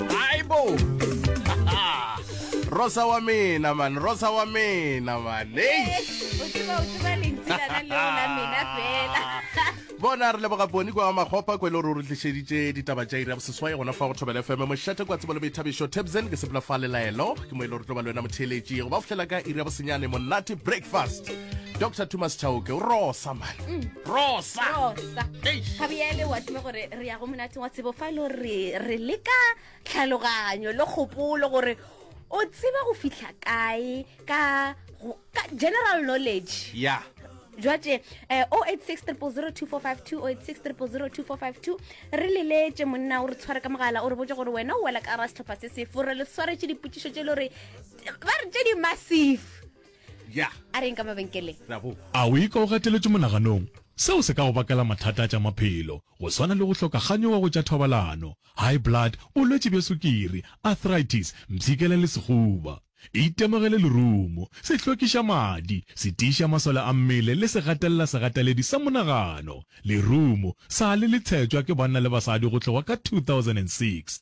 aibo rosa wa mina man rosa wa mina man bona re leboga boni kwa makgopa kwa e le gore o re tlišeditše ditaba tša ira boseswae gona fa go thobela fm mošate kwa tsebo le boithabišo tabsen ke sepela fa lelaelo ke mo e le gore tlo ba le wena motheeletši go ba fohlela ka ira bosenyane monate breakfast dr thomas chauke o rosa man mm. rosa re ya go monateng wa tsebo fa e le gore re leka tlhaloganyo le kgopolo gore o tseba go fitlha kae ka go- ka general knowledge ya jwate eh, 0860002452 0860002452 re leletse monna o re tshware ka mogala o re botse gore wena o wela ka gara setlhopha se sefo re le tshwaretše dipotšišo tše e le gore ba re tše di massive ya a reng ka mabenkeleng ra bo A o ikwa o gateletšwe monaganong? Seo se ka go bakela mathata a tša maphelo, go swana le go hloka ganyo wa go tša thobalano, high blood, bolwetši bja sukiri, arthritis, mpshikela le sehuba. Itemogele lerumo, sehlokišamadi, se tiiša masole a mmele le segatelela-segateledi sa monagano. Lerumo sa le le tshetšwa ke banna le basadi go tloga ka 2006.